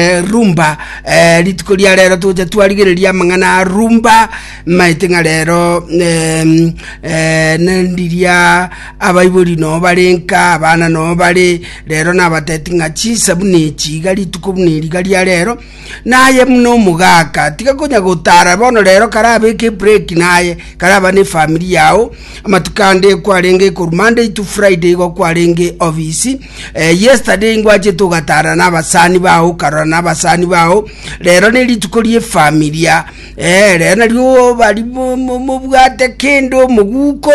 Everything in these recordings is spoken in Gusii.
Eh, rumba eh, rituko ria rero togocha twarigereria amang'ana a rumba maete ng'a rero em, eh, nendiria abaibori no barenka abana no bare rero nabateti ng'a chinsa buna echi iga rituko buna eri iga ria rero naye buna omogaka tiga konya gotara bono rero karabeke ebreki naye karaba ne efamiri yao amatuko ande kwarenge ekorumande itu friday igo kwarenge obisi Eh, yesterday ingwachete ogatara na abasani bao ukarora na abasani bao rero ne rituko rie familia eh, rero nario bari mo- mo- mobwate kende omoguko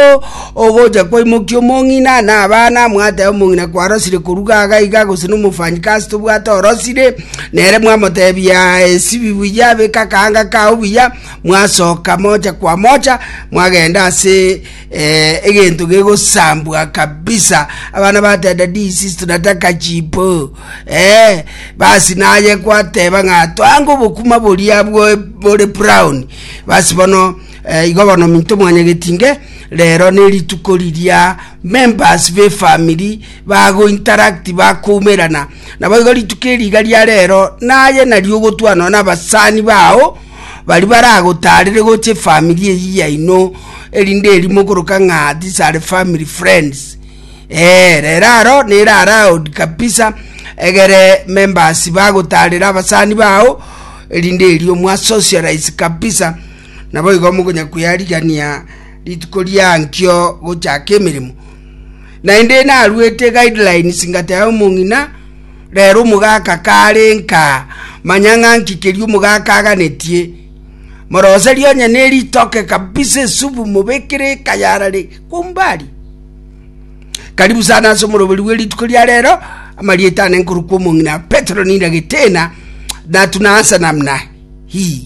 ogocha kwaimokia omong'ina na abana mwateba omong'ina kwarosire koruga aga iga gose na omofanyikasi tobwate orosire nere mwamotebia esibi buya abeka kaanga kao buya mwasoka mocha kwa mocha mwagenda ase Eh, egento gegosambwa kabisa abana batenda disi tunataka chipo eh, basi naye kwateba ng'a twange obokuma boria bwo- bore brown basi bono eh, igo bono minto mwanyagetinge rero nerituko riria members befamili bagointeract bakoumerana nabo igo rituko eri iga ria rero naye nari ogotwa nonya na abasani bao baria baragotaarere gocha efamiri eyio yaino, erinde erimo okoroka ng'a these are family friends. Ee, rero aro nere allowed kabisa egere members bagotaarere abasani bao, erinde erio mwa socialize kabisa, naboigo mokonya kweyarigania rituko riankio gochaka emeremo. Naende naruete guidelines ngateba omong'ina, rero omogaka kare nka, manya ng'a nki keria omogaka aganetie. Moroserie onye neritoke kabisa esubu mobekere ekayarare kumbari. Karibu sana ase omoroberi bwe rituko ria rero, amarieta ane nkorokwa omong'ina Petero ninde getena, natuna ase namna hii.